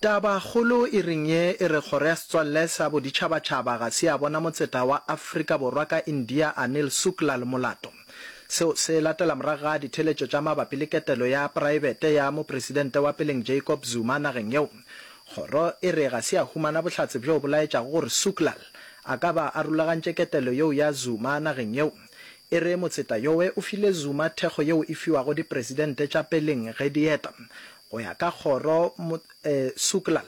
Tabakgolo e reng ye e re Kgoro ya Setswalle sa Boditšhabatšhaba ga se ya bona motseta wa Afrika Borwa ka India Anil Sukla le molato. Seo se latela morago ga ditheeletšo tša mabapi le ketelo ya praebete ya mopresidente wa peleng Jacob Zuma nageng yeo. Kgoro e re ga se ya humana bohlatse bjo bo laetšago gore Suklal a ka ba a rulagantše ketelo yeo ya Zuma nageng yeo. E re motseta yowe o file Zuma thekgo yeo e fiwago dipresidente tša peleng ge di eta Go ya ka kgoro, Mo, e, Suklal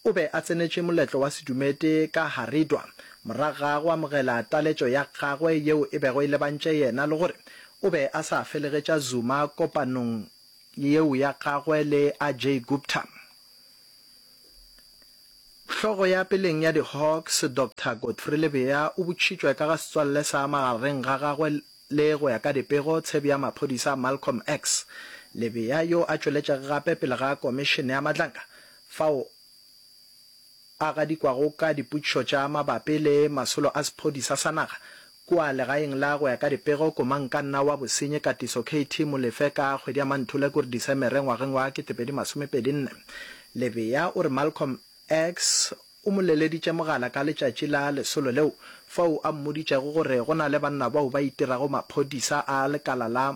o be a tsenetše moletlo wa sedumedi ka Haridwar morago ga go amogela taletšo ya gagwe yeo e bego e lebantše yena le gore o be a sa felegetša Zuma kopanong yeo ya gagwe le Ajay Gupta. Hlogo ya peleng ya di-Hawks, Doctor Godfrey Lebea o botšitšwe ka ga setswalle sa magareng ga gagwe le, go ya ka dipego, tshebi ya maphodisa Malcolm X. Lebea yo a tšweletšeg gape pele ga Komišene ya Matlaka fao a gadikwago ka dipotšišo tša mabapi le masolo a sephodisa sa naga, Kua legaeng la Go ya ka Dipego, Komankanna wa Bosenyi Katiso KT. Molefe ka kgwedi ya Manthule kuri Disemere ngwageng wa 2024. Lebea o re Malcolm X o mo leleditše mogala ka letšatši la lesolo leo fao a mmoditšego gore go na le banna bao ba itirago maphodisa a lekala la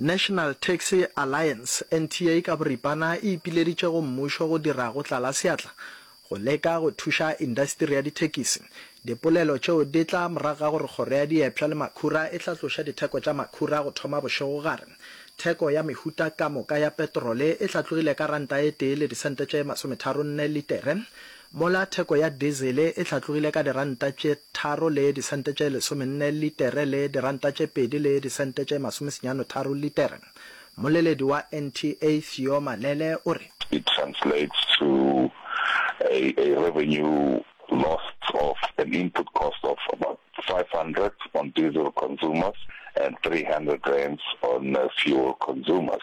National Taxi Alliance, NTA, ka boripana e ipileditše go mmušo go dira go tlala seatla go leka go thuša indasteri ya dithekisi. Dipolelo tšeo di tla morago ga gore Kgoro ya Diepša le Makhura e tla tloša ditheko tša makhura go thoma bošego gare. Theko ya mehuta ka moka ya petrole e hlatlogile ka ranta e tee le disente tše masometharonne litere, mola theko ya dizele e hlatlogile ka diranta tše tharo le disente tše lesomenne litere le diranta tše pedi le disente tše masomesenyano tharo litere. Mmoleledi wa NTA Theo Malele o re. It translates to a a revenue lost of an input cost of about 500 on diesel consumers and 300 rands on fuel consumers.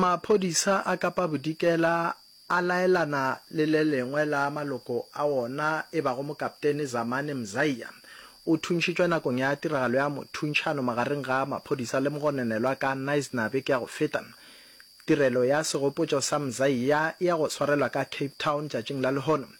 Maphodisa a Kapa Bodikela a laelana le le lengwe la maloko a wona e bago Mokaptene Zamani Mzaiya. O thuntšhitšwe nakong ya tiragalo ya mothuntšhano magareng ga maphodisa le mogononelwa ka Knysna beke ya go feta. Tirelo ya segopotšo sa Mzaiya e ya go swarelwa ka Cape Town tšatšing la lehono.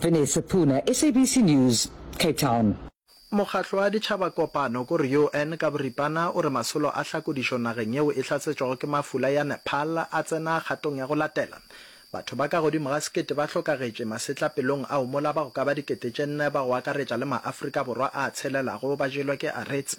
Vanessa Puna, SABC News, Cape Town. Mokgatlo wa Ditšhaba Kopano ko re UN ka boripana o re masolo a hlakodišo nageng yeo e hlasetšwago ke mafula ya Nepal a tsena kgatong ya go latela. Batho ba ka godimo ga sekete ba hlokagetše masetlapelong ao mola ba go ka ba dikete tše nne ba go akaretša le ma-Afrika Borwa a tshelelago ba jelwa ke aretse.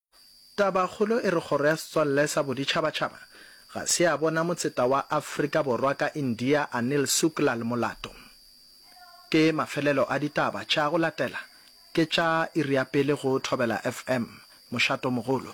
Tabakgolo e re Kgoro ya Setswalle sa Boditšhabatšhaba ga se ya bona motseta wa Afrika Borwa ka India Anil Suklal molato. Ke mafelelo a ditaba tša go latela ke tša iri ya pele go Thobela FM, Mošatomogolo.